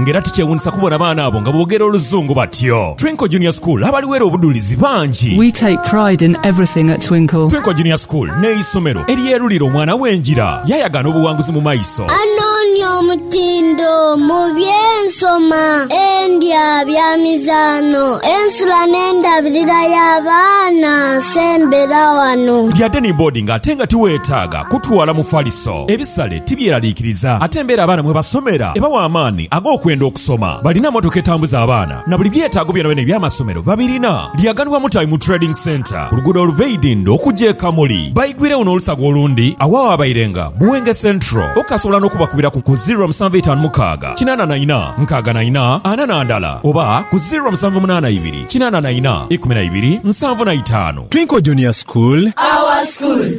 Nga era tikyewuunisa kubona baana abo nga boogera Oluzungu batyo! Twinkle Junior School abaliweera obudhulizi bangi. We take pride in everything at Twinkle. Twinkle Junior School n'eisomero eryerulira omwana we engira yaayagaana obuwanguzi mu maiso. Anoonia omutindo mu by'ensoma, endya, bya mizaano, ensula n'endabirira y'abaana sembera wano. Lya Deni Boarding ate nga tiweetaaga kutwala mufaliso. Ebisale. Tibyeraliikiriza ate embeera abaana mwe basomera ebawa amaani ag'okwenda okusoma. Balina mmotoka etambuza abaana na buli byetaago byonabyona eby'amasomero babirina. Lyaganibwa Mutabi mu Trading Centre ku luguudo oluva e Idinda okugya e Kamuli. Baigwiregho n'olusaga olundi agho awabairenga Buwenge Central. Okasobola n'okubakubira ku ku ziro musanvu itaanu mukaaga kinaana na ina nkaaga na ina ana na ndala oba ku ziro musanvu munaana ibiri kinaana na ina ikumi na ibiri nsanvu na itaanu. Twinkle Junior School. Our School.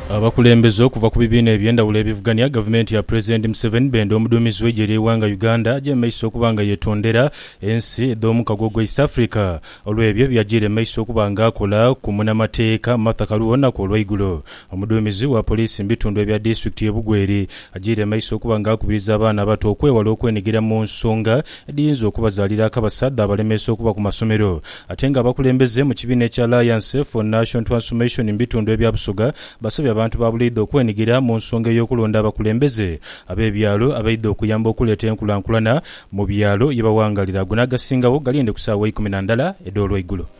Abakulembeze okuva ku bibiina eby'endhawulo ebivugania gavumenti ya Pulezidenti Museveni benda omuduumizi w'eigye ly'eighanga Uganda aje mu maiso okuba nga yetondera ensi edh'omukago ogwa East Africa olw'ebyo byajiire mu maiso okuba nga akola ku munamateeka Martha Karua olunaku olweigulo. Omuduumizi wa poliisi mu bitundu ebya disitulikiti ye Bugweri ajiire mu maiso okuba nga akubiriza abaana abato okwewala okwenigira mu nsonga edhiyinza okubazaalira akabasa dhaabalemesa okuba ku masomero ate nga abakulembeze mu kibiina ekya Alliance for Nation Transformation mu bitundu ebya Busoga basabye abantu ba buleidha okwenhigira mu nsonga ey'okulonda abakulembeze ab'ebyalo abaidha okuyamba okuleeta enkulankulana mu byalo ye bawangalira ago n'agasingawo galiinde ku saawa ikumi na ndala edh'olweigulo.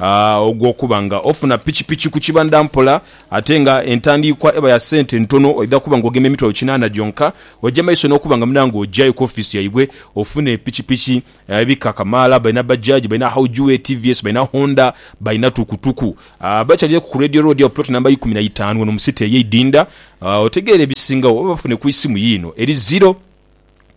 ogw'okuba nga ofuna pikipiki ku kibandha mpola ate nga entandiikwa eba ya sente ntono, oidha kuba nga ogema emitwalo kinaana gyonka, oja mu maiso n'okuba nga muna nga ojayo ku ofiisi yaibwe ofune pikipiki ebika kamaala. Balina Bajaj, balina Haojue, tvs, balina Honda, balina tukutuku. Bakyalireku ku Radio Road agho Plot Namba ikumi na itaanu ghano mu City ey'e Idinda. Otegeere ebisingawo oba bafune ku isimu yiino eri ziro.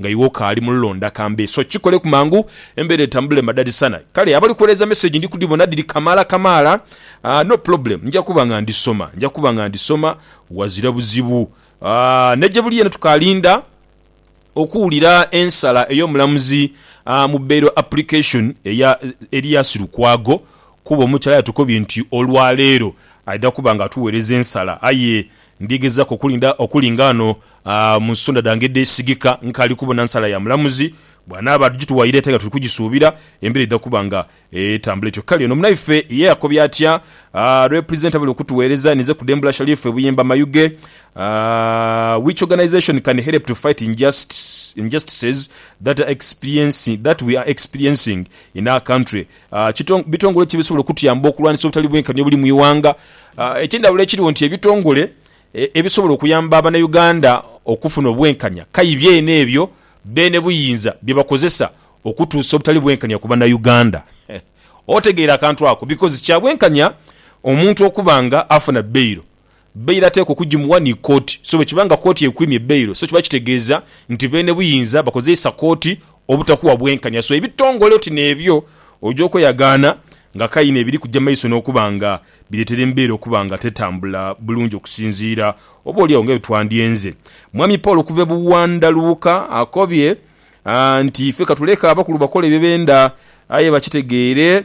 Nga iwe okaali mu lulonda kambe, so kikoleku mangu embeera etambule madhalisana. Kale abali kuwereeza message ndi kudhibona dhiri kamaala kamaala. Aah no problem, nja kuba nga ndhisoma, nja kuba nga ndhisoma wazira buzibu. Aah ne gye buli yena tukaalinda okuwulira ensala ey'omulamuzi mu bail application eya Elias Lukwago kuba omukyala yatukobye nti olwaleero aidha kuba nga atuweereza ensala aye Ndyegezaku okulinda okuli ng'ano mu nsonda dhange edheesigika nkaali kubona nsala ya mulamuzi. Bw'anaaba adhituwaire ate nga tuli kugisuubira, embeera eidha kuba nga etambula etyo. Kale ono munaife ye yakobye atya? Represent abali okutuweereza ninze kudhembula Sharif Buyemba Mayuge Which organisation can help to fight injustices that are experiencing that we are experiencing in our country Bitongole ki ebisobola okutuyamba okulwanisa obutali bwenkanya obuli mu ighanga? Ekyendhawulo ekirigho nti ebitongole ebisobola okuyamba Abanauganda okufuna obwenkanya kayi byene ebyo beene buyinza bye bakozesa okutuusa obutali bwenkanya ku Banauganda. Otegeera akantu ako? Bikozi kya bwenkanya omuntu okuba nga afuna bail Beyilo ateekwa okugimuwa ni kooti. So bwe kiba nga kooti ekwimye beyilo, so kiba kitegeeza nti beene buyinza bakozeisa kooti obutakuwa bwenkanya. So ebitongole oti n'ebyo oja okweyagaana nga kaino ebiri kuja mu maiso n'okuba nga bireetera embeera okuba nga tetambula bulungi okusinziira oboolyawo nga bwe twandyenze. Mwami Paul okuva e Buwandaluuka akobye nti, Ife katuleke abakulu bakole bye benda aye bakitegeere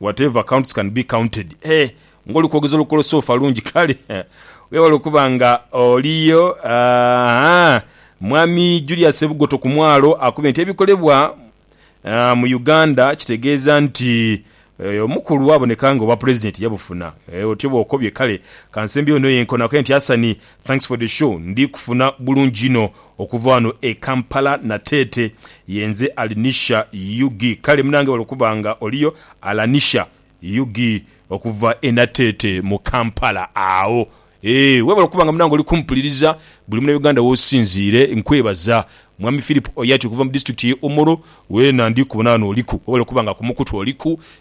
Whatever counts can be counted. Hee nga oli kwogeza olukolosofa lungi kale wewale okuba nga oliyo aah Mwami Julius Sebugoto ku mwalo akubye nti ebikolebwa mu Uganda kitegeeza nti omukulu aboneka nga obwa Pulezidenti yabufuna. Otyo bwokobye kale kansembyewo eno yenkonaku enti Asani Thanks for the show ndi kufuna bulungi inho okuva wano e Kampala Nateete yenze Alinisha ug kale munange wala okuba nga oliyo Alanisha ug okuva e Nateete mu Kampala agho eeh webale okuba nga munange oli kumpuliriza buli muna Uganda wosinziire nkwebaza Mwami Phillip Oyati okuva mu district ye Omoro weena ndi kubona wano oliku webale okuba nga kumukutu oliku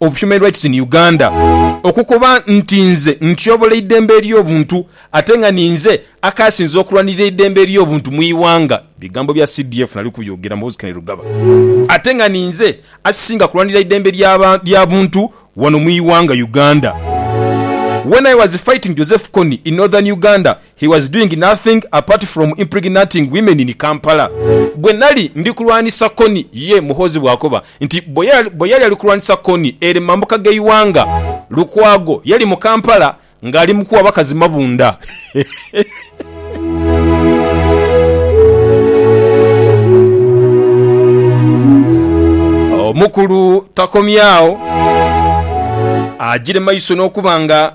of Human Rights in Uganda okukoba nti nze ntyobola eidembe ely'obuntu ate nga ninze akaasinze okulwanirira eidembe ely'obuntu mu ighanga, bigambo bya CDF nali kubyogera Muhoozi Kainerugaba, ate nga ninze asisinga kulwanirira eidembe lya buntu wano mu ighanga Uganda. When I was fighting Joseph Kony in Northern Uganda, He was doing nothing apart from impregnating women in Kampala. Bwe nali ndi kulwanisa Kony, ye Muhoozi bw'akoba nti bwe yali ali kulwanisa Kony ere mu mambuka g'eighanga, Lukwago yali mu Kampala ng'ali mu kuwa bakazi mabunda. Omukulu takomye agho, agyire maiso n'okuba nga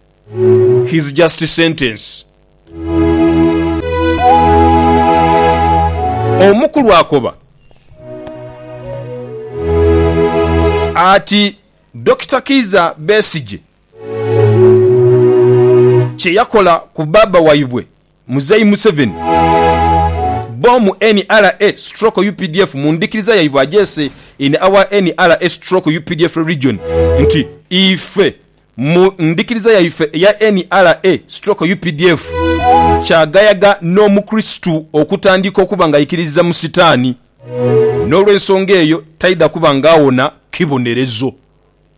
His just sentence. Omukulu akoba ati Dokita Kiiza Besigye kye yakola ku baaba waibwe Muzei Museveni, Bomu NRA stroke updf mu ndhikiriza yaibwe agyese in our NRA stroke updf religion nti ife mu ndhikiriza yaife eya NRA stroke updf kyagayaga n'omukristu okutandika okuba nga aikiririza mu sitaani n'olwensonga eyo taidha kuba nga awona kibonerezo.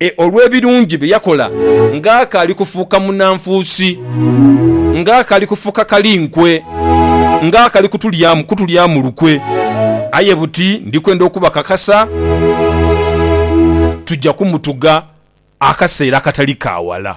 E Olw'ebirungi bye yakola ng'akaali kufuuka munanfuusi, ng'akaali kufuuka kali nkwe, ng'akali kutulyamu kutulyamu lukwe, aye buti ndi kwenda okubakakasa, tuja kumutuga akaseera akatali ka wala.